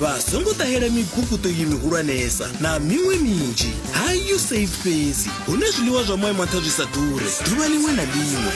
vha songo ṱahela miguguṱo iyi mihulwanesa na miṅwe minzhi ha usaid fhedzi hune zwiḽiwa zwa moya maṱha zwi sa ḓure ḓuvha ḽiṅwe na ḽiṅwe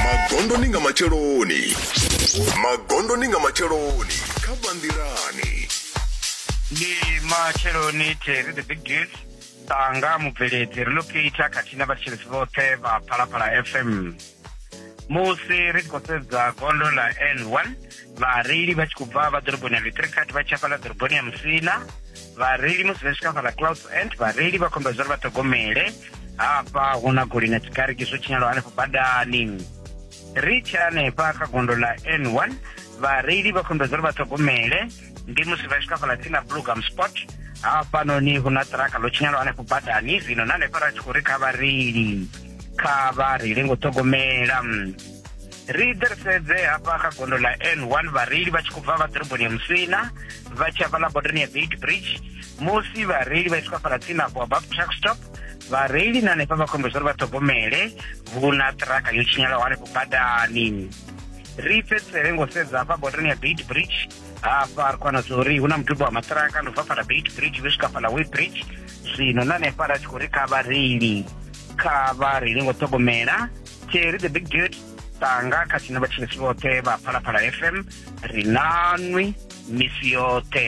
magondoni nga matsheloni magondoni nga matsheloni kha bandirani ndi matsheloni terry the big deals tanga mubveledzi relocate khathihi na vhatshiletsi vhoṱhe vha phalaphala fm musi ri tshi khou sedza gondo ḽa n one vhareili vha tshi khou bva vha ḓoroboni ya litricat vha tshi afhaḽa ḓoroboni ya musina vhareili musi vha swika fhaḽa clouds end vhareili vha khombela zwa uri vha ṱhogomele hafha hu na goli na tshikariki zwo tshinyalwa hanefho badani ri tshe hanefha kha gondo ḽa n one vhareili vha khombela zwa uri vha ṱhogomele ndi musi vha swika fhaḽa tsini na blugam spot hafhanoni hu na ṱiraka ḽo tshinyalaho hanefho badani zwino na hanefha ra tshi khou ri kha vhareili kha vhareili ngo ṱhogomela ri ḓe ri sedze hafha kha gondo ḽa n one vhareili vha tshi khou bva vha ḓoroboni ya musina vha tshi hafhaḽa bodoni ya beit bridge musi vhareili vha tshi khou fhala tsini afho above truck stop vhareili na hanefha vha khombedzwa uri vha ṱhogomele vhu na ṱiraka yo tshinyalaho hanefho badani ri pedzisele ngo sedza hafha botani ya beit bridge hafha ri kwana zori hu na mudubo wa maṱiraka ndo bva fhala beit bridge vhe swika fhala way bridge zwino na hanefha ra tshi khou ri kha vhareili kha vhareili ngo ṱhogomela teri the big dude tanga kha tshine vhatshilisi vhoṱhe vha phalaphala fm ri nanwi misi yoṱhe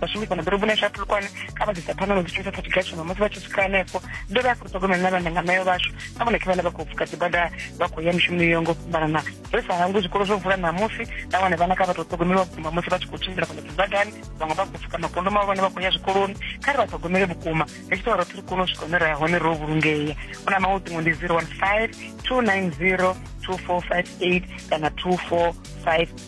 vhashumi fhano ḓoroboni yashu ya phulukwane kha vha ḓisa phanḓa na dzi shumisa thati gashono musi vha tshi swika hanefho ndo vha ya khou ṱhogomela na vhana nga mayo vhashu na vhone khe vhana vha khou pfuka dzibada vha khou ya mishumoni yo ngo fhambanana ri sa hangwi zwikolo zwo vula ṋamusi na vhone vhana kha vha tou ṱhogomeliwa vhukuma musi vha tshi khou tshimbila fhano dzibadani vhaṅwe vha khou pfuka makondo mavho vhane vha khou ya zwikoloni kha ri vha ṱhogomele vhukuma ri tshi tou roṱhe ri kone u swika hune ra ya hone ro vhulungea u na maṅwe ṱingo ndi 015 290 2458 kana 245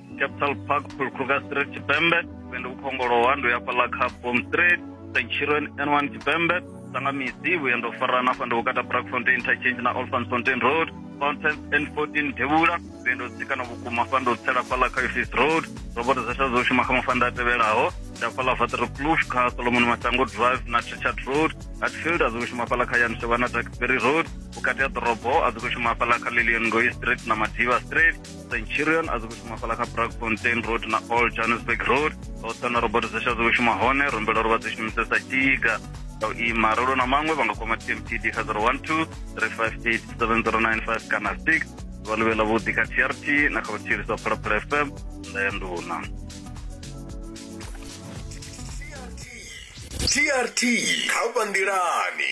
capital park phulukhuka street tshipembe nṋe ndi vhukhongolowa ndo ya fhaḽa kha bom street st children n one tshipembe sanga misi vhuya ndo farana fha ndo vhukata brakfontein interchange na olfans fontain road fountain n fourteen devhula vhuya ndo tsikana vhukuma fha ndo tsela fhaḽa kha office road roboto dza shadzo shuma kha mafanda a tevhelaho nda fhaḽa vater kloof kha solomon masango drive na trichard road hatfield a dzi khou shuma fhaḽa kha yanshovha na darkberry road vhukati ha ḓorobo a dzi khou shuma fhaḽa kha lilian ngoi street na madiva street centurion a dzi khou shuma fhala kha brakfontein road na all johannesburg road oṱa na robot zesha dzi khou shuma hone rumbela uri vha dzi shumisesa tiga nga u ima rolo na maṅwe vha nga kwama tmtd kha 012 358 7095 kana 6 vha luvhela vhuḓi kha trt na kha vhuthirisa phalaphala fm nda ya nduna trt kha vha nḓilani